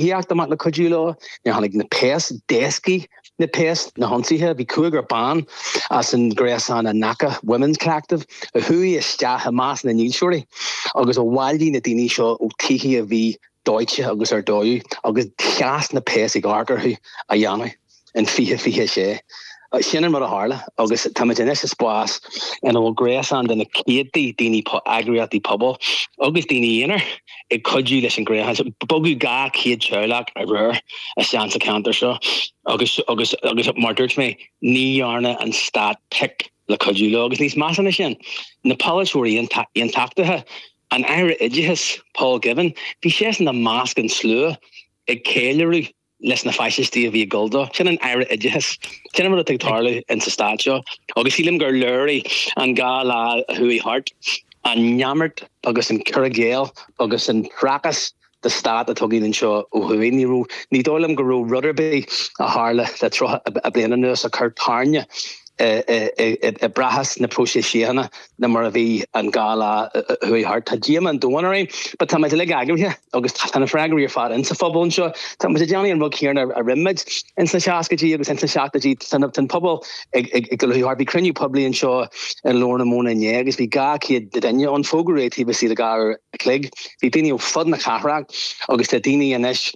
Theacht amach le cuidiú leo nuair tháinig na péas, d'éascaigh na péas na hionsaithe. Bhí cúigear ban as an gréasán Anaka Women's Collective a chuaigh isteach i measc na ndílseoirí agus a bhailigh na daoine seo ó tithe a bhí dóite agus ar dó agus sheas na péas ag amharc orthu á dhéanamh. in 2026. Sin an rud a tharla agus táimid anois i spás ina bhfuil gréasán de na céadtaí daoine, eagraíochtaí pobail agus daoine aonair ag cuidiú leis an ghréasán seo. Bogadh 200 teaghlach aréir anseo insa cheantar seo agus, mar a dúirt mé, ní dhearna an stát pic le cuidiú leo. Agus níos measa ná sin, na polaiteoirí aontachtaithe, an Aire Oideachais Paul Givan, bhí seisean i measc an tslua ag ceiliúradh leis na faisistí a bhí ag dul dó. Sin an Aire Oideachais. Sin an rud atá ag tarlú ins an stát seo agus sílim gur léirigh an dhá lá a chuaigh thart an neamart agus an cur i gcéill agus an prácás de stát atá againn anseo ó thuaidh. Ní raibh, ní dóigh liom go raibh rud ar bith a tharla le tríocha bliain anuas a chuir tairne i bprácás na próiseas síochána Ná mar a bhí an dhá lá a chuaigh thart, tá díomá an domhain orainn, but tá muid uilig eagraithe agus tá na freagraí ar fad insa phobal anseo. Tá muid ag déanamh an rud chéanna a rinne muid ins na seascaidí agus ins na seachtaidí, tá an pobal ag ag ag dul thart. Bhí cruinniú poiblí anseo i nGlór na Móna inné agus bhí dhá chéad duine ann, fógraíodh taobh istigh de dhá uair a chloig. Bhí daoine ó fud na cathrach agus tá daoine anois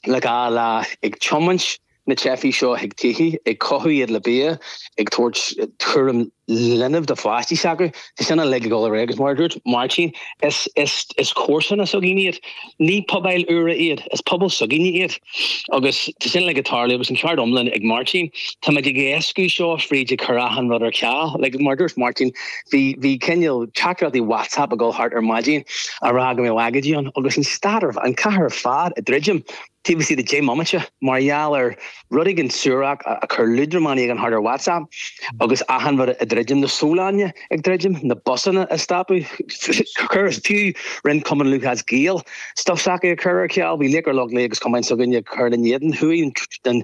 le dhá lá ag tiomáint na teifigh seo chuig tithe, ag cothú iad le bia, ag tabhairt cúram linbh do pháistí s'acu. Tá sin uilig ag dul ar aghaidh agus mar a dúirt Máirtín, is comharsana s'againne iad. Ní pobail úra iad, is pobal s'againne iad agus tá sin uilig ag tarlú agus an ceart iomlán ag Máirtín. Tá muid ag éascú seo fríd ag cur achan rud ar ceal. Mar a dúirt Máirtín, bhí bhí cineal teachtaireachtaí WhatsApp ag dul thart ar maidin ag rá go mbeadh agóidí ann agus an stát ar, an chathair ar fad ag druidim taobh istigh de deich mbomaite mar gheall ar rud éigin suarach a chuir liúdramán éigin thart ar WhatsApp agus achan rud ag druidim, na sólainne ag druidim, na busanna ag stopadh, chuir fiú roinnt cumann Lúthchleas Gael stuif s'acu ag cur ar ceal, bhí Laochra Loch Lao agus cumann s'againne ag cur in éadan cuid den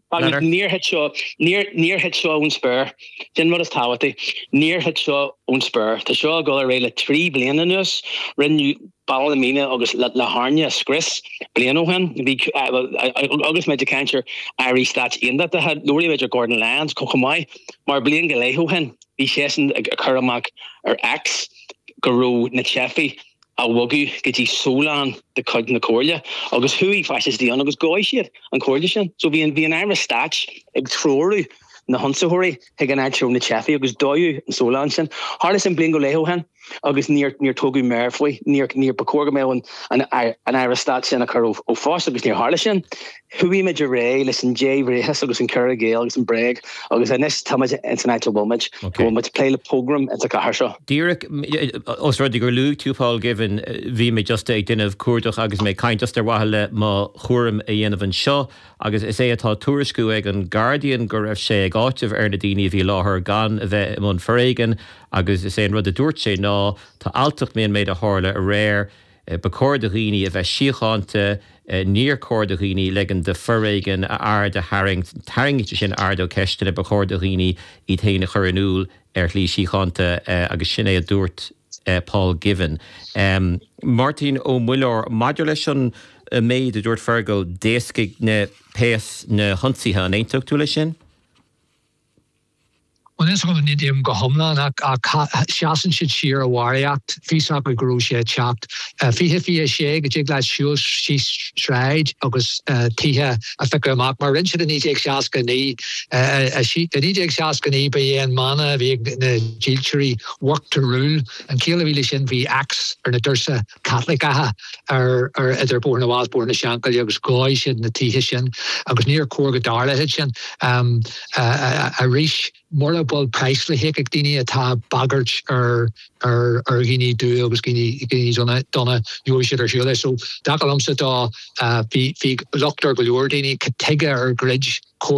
Agus níor thit seo, níor, níor thit seo ón spéir. Sin an rud is tábhachtaí. Níor thit seo ón spéir. Tá seo ag dul ar aghaidh le trí bliana anuas. Rinneadh Baile Meánach agus La, Latharna a scrios bliain ó shin. Bhí, bhí, agus muid ag caint ar airí stáit aontachtaithe, labhraímid ar Gordon Lyons chomh, chomh maith. Mar bliain go leith ó shin, bhí seisean ag, ag cur amach ar X go raibh na teifigh a bhogadh go dtí sólann de chuid na comhairle agus chuaigh faisistí ann agus dhóigh siad an chomhairle sin. So bhí an aire stáit ag treorú na hionsaitheoirí chuig an áit a raibh na teifigh agus dódh an tsólann sin. Tharla sin bliain go leith ó shin agus níor níor tógadh méar faoi. Níor níor ba chóir go mbeadh an an aire stáit sin a chur ó phost agus níor tharla sin. Chuaigh muid ar aghaidh leis an débhríochas agus an cur i gcéill agus an bréag agus anois tá muid ins an áit a bhfuil muid, go bhfuil muid ag plé le pogrom ins an gcathair seo. Díreach os rud é gur luaigh tú Paul Givan, bhí mé just ag déanamh cuardach agus mé ag caint just ar mhaithe le mo chúram a dhéanamh anseo agus is é atá tuairisciú ag an Guardian go raibh sé ag áiteamh ar na daoine a bhí i láthair gan a bheith i mbun foréigin agus is é an rud a dúirt sé ná tá alltacht faoin méid a tharla aréir Ba chóir do dhaoine a bheith síochánta, níor chóir do dhaoine leigean de foréigean a aird a tharraingt. Tarraingeodh sin aird ó cheisteanna, ba chóir do dhaoine iad féin a chur in iúl ar shlí síochánta agus sin é a dúirt Paul Givan. Máirtín Ó Muilleoir, Maidir leis an méid a dúirt Fergal, d'éascaigh na péas na hionsaithe, an aontódh tú leis sin? Bhuel ní aontaím go hiomlán ach sheasann siad siar i bharraíocht bhí a fhios acu go raibh sé ag teacht. 2026 go dtig leat siúl síos sráid agus tithe a phiocadh amach mar a rinne siad i 1969. I 1969 ba é an mana a bhí ag na dílseoirí 'work to rule'. An chiall a bhí leis sin bhí X ar na doirse Caitliceacha ar idir Bóthar na bhFál 's Bóthar na Seanchaille agus dhóigh siad na tithe sin agus níor chóir go dtarlódh sin arís. Mura bhfuil praghas le híoc ag daoine atá ag bagairt ar dhaoine dubha agus dhaoine donna gheobhaidh siad ar shiúl leis. So, feictear liomsa dá bhí locht ar go leor daoine, cad chuige ar dhruid Comhairle